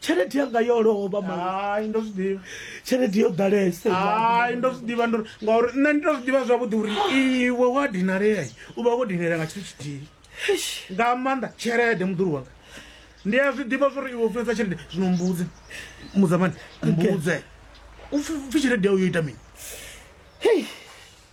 tshelede yanga yo lovha hai ndo zwi ḓivha tshelede yo ḓalese hai ndo zwi ḓivha ndo ngauri nṋe ndi to zwi ḓivha zwavhuḓi uri iwe wa dinalea u vha wo dinela nga tshithu tshithihi nga maanḓa tshelede muḓulu wanga ndi a zwi ḓivha zwori iwe funesa tshelede zwino mbudze mudzamani mbudze upfhi tshelede yau yo ita mini hei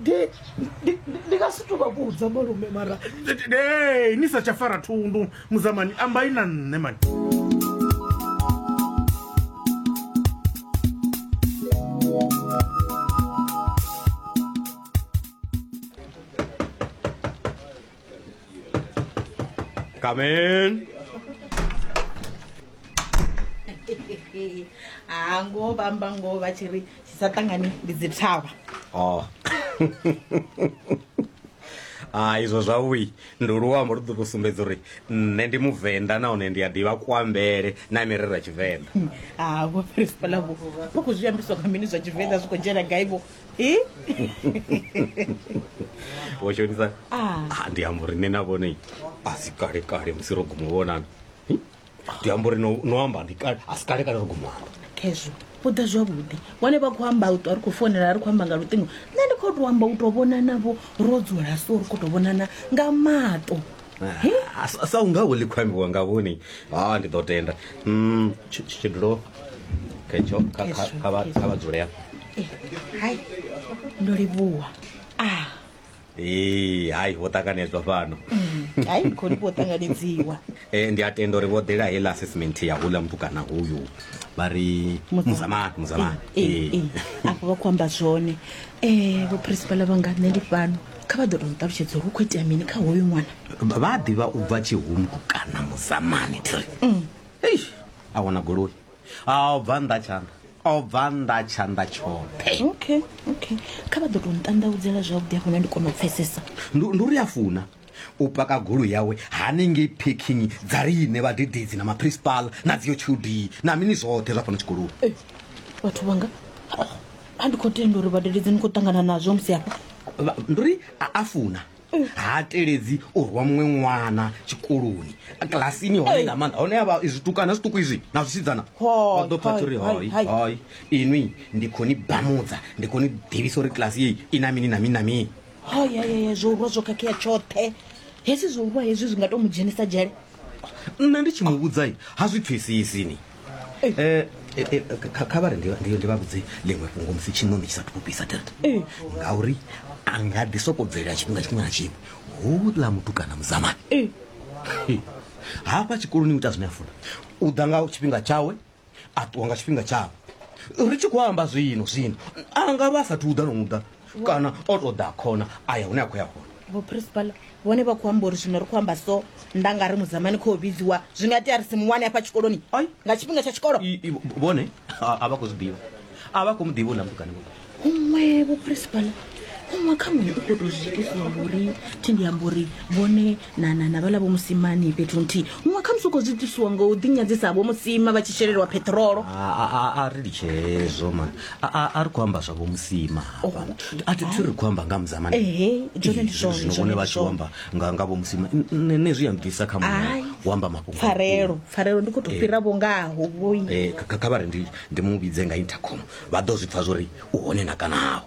Ndi- ndi- ndi- ndi nga si to vha vhudza malume mara Hey, ni sa tsha fara thundu muzamani ambai na nṋe mani Come in. ha ngoho vha amba ngoho vha tshi ri tshi sa ṱangani ndi dzi thavha Oh. Ah izwo zwavhui ndi luambo lu ḓo tou sumbedza uri nṋe ndi muvenḓa nahone ndi a ḓivha kuambele na mirero ya tshivenḓa ha vho fhirispalavo vho khou zwi ambiswa nga mini zwa tshivenḓa zwi khou dzhena gaivo wo shonisa Ah, ndi amba uri nṋe na vhone a si kale kale musi ro guma u vhonana Hi, ndi amba uri no no amba ndi kale a si kale kale ro guma u amba khezwo u ḓa zwavhuḓi vhone vha khou amba u ṱwa ri khou founela ri khou amba nga luṱingo nṋe ndi khou tou amba u tou vhonanavho ro dzula so ri khou tou vhonana nga maṱo Ah, sa- sa unga uli khou ambiwa nga vhoni ha ndi ḓo tenda Mm, tshi- tshi- tshidulo ketsho kha- kha- Hezwo, kha vha- hezwo. kha vha dzule hafho Eh, hai ndo livhuwa ah Ee, hai vho ṱanganedzwa fhano hai ndi khou livhuwa ṱanganedziwa Eh, ndi a tenda uri vho ḓela heiḽa assessment ya hula mutukana hoyu vha ri muzamani muzamani Eh, eh, afho vha khou amba zwone um vho principala vhanga nṋe ndi fhano kha vha ḓo to nṱalutshedza uri hu khou itea mini kha hoyu ṅwana vha ḓivha u bva tshihumbu kana muzamani tiri mm. eish a wana goloi a u bva nnḓa tshanḓa o bva nnḓa tshanḓa tshoṱhe okay okay kha vha ḓo to nṱanḓaudzela zwavhuḓi afho na ndi kona u pfesesa ndi uri a funa u paka golo yawe hanengei packing dza riine vhadededzi na maprincipal na dziyo tshudi na mini zwoṱhe zwa fana tshikoloni vhathu vhanga a ndi khou tenda uri vhadededzi ni khou ṱangana nazwo musi hafha Vha- ndi uri a a funa ha teledzi u rwa muṅwe ṅwana tshikoloni kilasini hone nga maanḓa hone avha zwitukana zwiṱuku izwi na zwisidzana Hoi, vha ḓo pfa hoi, uri hoi, hoi hoi. hoi inwi ndi khou ni bamudza ndi khou ni ḓivhisa uri kilasi yeyi i na mini na mini na mini hayayaya zwo urwa zwo khakhea tshoṱhe hezwi zwo urwa hezwi zwi nga to mu dzhenisa dzhele nṋe ndi tshi mu vhudzai ha zwi pfesesini kha vha ri ndi ndi ndi vha vhudze ḽiṅwe fhungo musi tshiṋoni tshi sa thukubisa delta ngauri a nga ḓi soko bvelela tshifhinga tshiṅwe na tshiṅwe houḽa mutukana muzamani Hei. hafha tshikoloni u ita zwine a funa u ḓa nga tshifhinga tshawe a ṱuwa nga tshifhinga tshawe ri tshi khou amba zwino zwino a nga vha a sathu uḓa no uḓa kana o tou ḓa khona a ya hune a khou ya hone vho principal vhone vha khou amba uri zwino ri khou amba so nda nga ri mudzamani khou vhidziwa zwi nga tea ri si muwane hafha tshikoloni Ai. nga tshifhinga tsha tshikolo I- i- vhone a a vha khou zwi ḓivha a vha khou mu ḓivha u na mutukani vhone huṅwe vho principal huṅwe kha muṅwe u khou tou zwi itisa uri thi ndi amba uri vhone na na na vhala vho musimani fhethu nthihi muṅwe khamusi u khou zwi ṱusiwa ngo u ḓinyadzisa ha vho musima vha tshi shelelwa peṱirolo A- a- a- a ri litshe hezwo mani A- a- a ri khou amba zwavho musima hafhana a thi thi ri khou amba nga muzamani Ehe, zwone ndi zwone, zwino zwone vhone ndi vha tshi zwone. amba nga nga vho musima N- nṋe nṋe zwi ya mpfisa kha Ai. muya u amba mafhungo pfarelo pfarelo ndi khou tou fhira vho ngaho vhoi Eh, kha kha vha ri ndi ndi mu vhidze nga intercom vha ḓo zwi pfa zwori u hone na kanaho